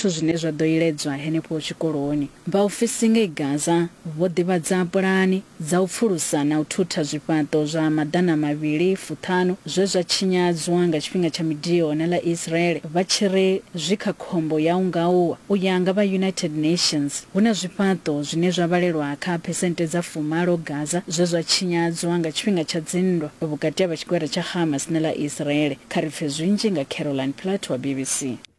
Zwithu zwine zwa ḓo iledzwa henefho tshikoloni. Vhaofisi ngei Gaza vho ḓivhadza pulani dza u pfulusa na u thutha zwifhaṱo zwa maḓana mavhili fuṱhanu zwe zwa tshinyadzwa nga tshifhinga tsha midio na ḽa Israel vha tshi ri zwi kha khombo ya u nga wa. U ya nga vha United Nations, hu na zwifhaṱo zwine zwa vhalelwa kha phesenthe dza fumalo Gaza zwe zwa tshinyadzwa nga tshifhinga tsha dzinndwa vhukati ha vha tshigwada tsha Hamas na ḽa Israel. Kha ri pfe zwinzhi nga Caroline Platt wa BBC.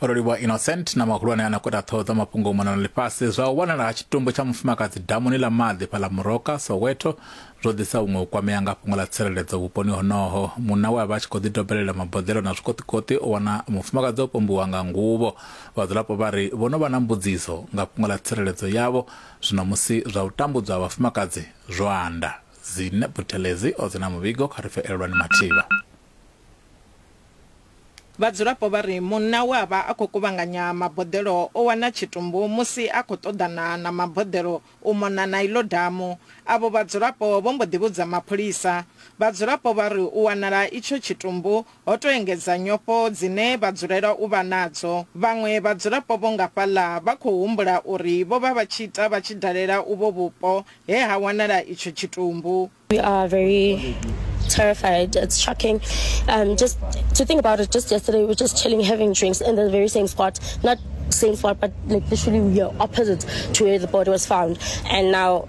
ololiwa innocent na mahulwane a nakota ṱhoho dza mafhungo u mona na ḽifhasi zwa u wanala ha tshitumbu tsha mufumakadzi damuni ḽa maḓi fhaḽa muroka soweto zwo ḓisa huṅwe u kwamea nga fhungo ḽa tsireledzo vhuponi honoho munna we a vha a tshi khou ḓidobelela maboḓelo na zwikoṱikoṱi o wana mufumakadzi o pombiwa nga nguvho vhadzulapo vha ri vho no vha na mbudziso nga fhungo ḽa tsireledzo yavho zwino musi zwa u tambudzwa ha vhafumakadzi zwo anda Dzine Buthelezi o dzi na muvhigo kha ri pfe elelwani mathivha. Vhadzulapo vha ri munna we a vha a khou kuvhanganya maboḓelo o wana tshitumbu musi a khou ṱoḓana na maboḓelo u mona na iḽo damu. Avho vhadzulapo vho mbo ḓi vhudza mapholisa. Vhadzulapo vha ri u wanala itsho tshitumbu ho tou engedza nyofho dzine vha dzulela u vha nadzo. Vhaṅwe vhadzulapo vho nga fhaḽa vha khou humbula uri vho vha vha tshi ita vha tshi dalela uvho vhupo he ha wanala itsho tshitumbu. We are very terrified. It's shocking. Um, just to think about it, just yesterday we were just chilling, having drinks in the very same spot. Not same spot, but like literally we are opposite to where the body was found. And now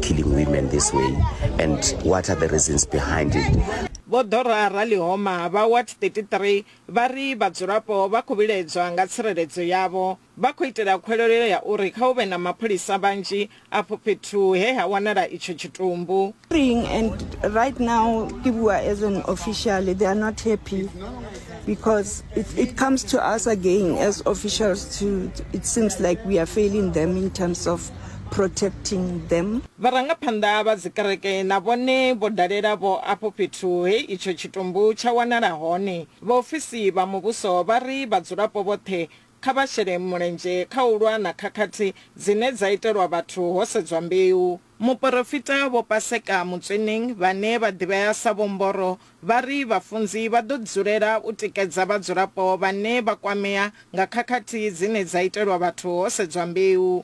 killing women this way and what are the reasons behind it Vho Dora Ralihoma vha Ward 33 vha ri vhadzulapo vha khou vhiledzwa nga tsireledzo yavho. Vha khou itela khwelelo ya uri kha hu vhe na mapholisa vhanzhi afho fhethu he ha wanala itsho tshitumbu. And right now ke bua as an official they are not happy because it, it comes to us again as officials to it seems like we are failing them in terms of protecting them. Vharangaphanḓa vha dzikereke na vhone vho dalela vho afho fhethu he itsho tshitumbu tsha wanala hone. Vhaofisi vha muvhuso vha ri vhadzulapo vhoṱhe kha vha shele mulenzhe kha u lwa na khakhathi dzine dza itelwa vhathu ho sedzwa mbeu. Muporofita Vho Paseka Motsweneng vhane vha ḓivhea sa Vho Mboro vha ri vhafunzi vha ḓo dzulela u tikedza vhadzulapo vhane vha kwamea nga khakhathi dzine dza itelwa vhathu ho sedzwa mbeu.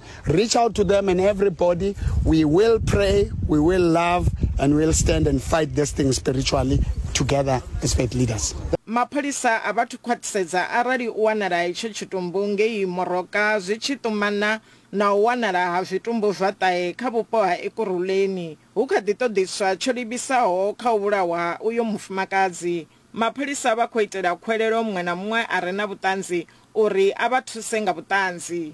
Reach out to them and everybody. We will pray, we will love, and we'll stand and fight this thing spiritually together as faith leaders. mapholisa a vha thu khwaṱhisedza arali u wanala itsho tshitumbu ngei Moroka zwi tshi ṱumana na u wanala ha zwitumbu zwa ṱahe kha vhupo ha Ekurhuleni. Hu kha ḓi ṱoḓiswa tsho livhisaho kha u vhulawa ha uyo mufumakadzi. Mapholisa vha khou itela khwelelo muṅwe na muṅwe a re na vhuṱanzi uri a vha thuse nga vhuṱanzi.